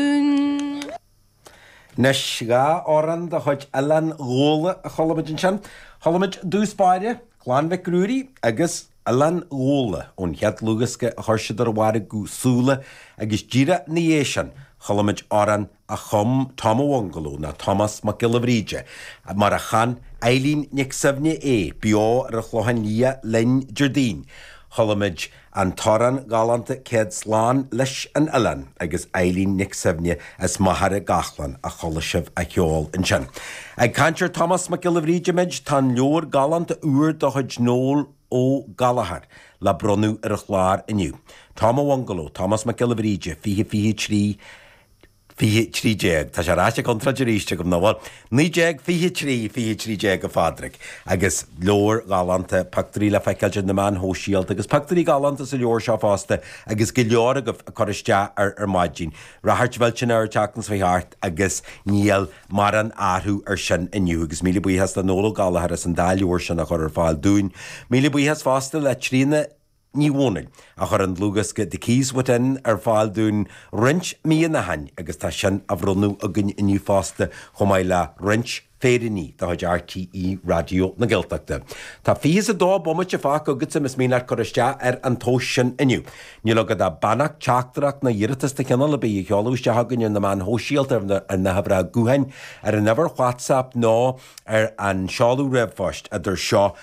Dún. Anois dhá amhrán de chuid Oileán Ghabhla a chuala muid ansin. Chuala muid i dtús báire, Clann Mhic Ruairí, agus Oileán Ghabhla ón chéad dlúthdhiosca a chuir siad ar a mhargadh, Súile, agus díreach ina dhiaidh sin chuala muid amhrán a chum Tom a Bhungalow, nó Tomás Mac Giolla Bhríde mar a chan Eileen Nic Suibhne é, beo ar an Chlochán Liath linn Déardaoin. Chuala muid. An t-amhrán galánta céad slán leis an oileán agus Eileen Nic Suibhne as Machaire Gathlán a chuala sibh á cheol ansin. Ag caint ar Tomás Mac Giolla Bhríde muid, tá an leabhar galánta úr de chuid Noel Ó Gallchóir le bronnadh ar an chlár inniu. Tom a Bhungalow, Tomás Mac Giolla Bhríde, 2023, 2013. Tá sé ráite contráilte arís agam, nó, bhuel, 1923, 2013, a Phádraig, agus leabhar galánta pioctúirí le feiceáil ar na meáin shóisialta, agus pioctúirí galánta sa leabhar seo fosta, agus go leor agaibh ag cur isteach air ar maidin. Ráchairt mhillteanach air an tseachtain seo chuaigh thart, agus níl morán athrú ar sin inniu, agus míle buíochas le Noel Ó Gallchóir as an dá leabhar sin a chur ar fáil dúinn. Míle buíochas fosta le Tríona, Ní Dhomhnaill, a chuir an dlúthdhiosca 'The Keys Within' ar fáil dúinn roinnt míonna ó shin agus tá sin á bhronnadh againn inniu fosta chomh maith le roinnt féiríní de chuid RTÉ Raidió na Gaeltachta. Tá fiche is a dó bomaite fágtha agatsa más mian leat cur isteach ar an tomhas sin inniu. Níl agat ach beannacht, teachtaireacht nó iarratas de chineál ar bith a sheoladh isteach againn ar na meáin shóisialta, ar na huimhreacha gutháin, ar an uimhir WhatsApp nó ar an seoladh ríomhphoist, idir seo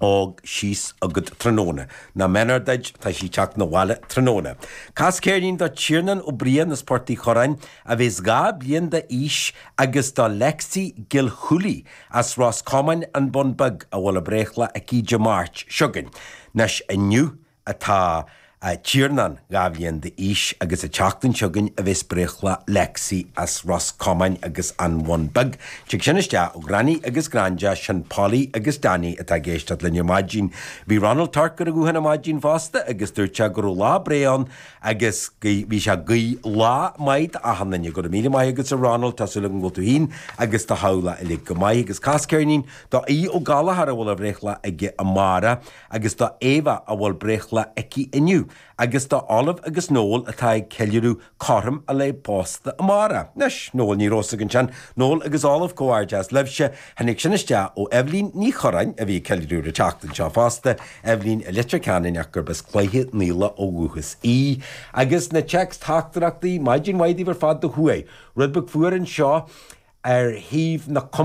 fhág síos agat tráthnóna. Nach méanar duit, tá sí ag teacht 'na bhaile tráthnóna. Cas ceirnín do Tiarnán Ó Briain as Port Uí Churráin, a bhéas dhá bhliain d'aois, agus do Lexi Gilhooly as Ros Comáin, An Bun Beag, a bhfuil a breithlá aici Dé Máirt seo chugainn. 'Nois inniu atá Tiarnán dhá bhliain d'aois agus an tseachtain seo chugainn a bheas breithlá Lexi as Ros Comáin agus an Bhun Bheag Tig sin isteach ó Granny agus Granda sin Polly agus Danny atá ag éisteacht linn ar maidin Bhí Ronald Torc ar an ghuthán ar maidin fosta agus dúirt sé go raibh lá breá ann agus bhí sé ag guí lá maith do achan duine Go raibh míle maith agat a Ronald tá súil agam go bhfuil tú féin agus do theaghlach uilig go maith agus cas ceirnín do Aodh Ó Gallchóir a bhfuil a bhreithlá aige amárach. agus do Éabha a bhfuil breithlá aici inniu, agus do Olive agus Noel atá ag ceiliúradh cothrom a lae pósta amárach. Anois, Noel, ní raibh a fhios againn sin. Noel agus Olive, Comhghairdeas libhse. Tháinig sin isteach ó Eibhlín Ní Churráin, a bhí ag ceiliúradh an tseachtain seo fosta, Eibhlín i Leitir Ceanainn ach gurb as Cloich Cheann Fhaola ó dhúchas í. Agus na téacs teachtaireachtaí, maidin mhaith daoibh ar fad, do chuaigh rud beag fuar anseo ar thaobh na.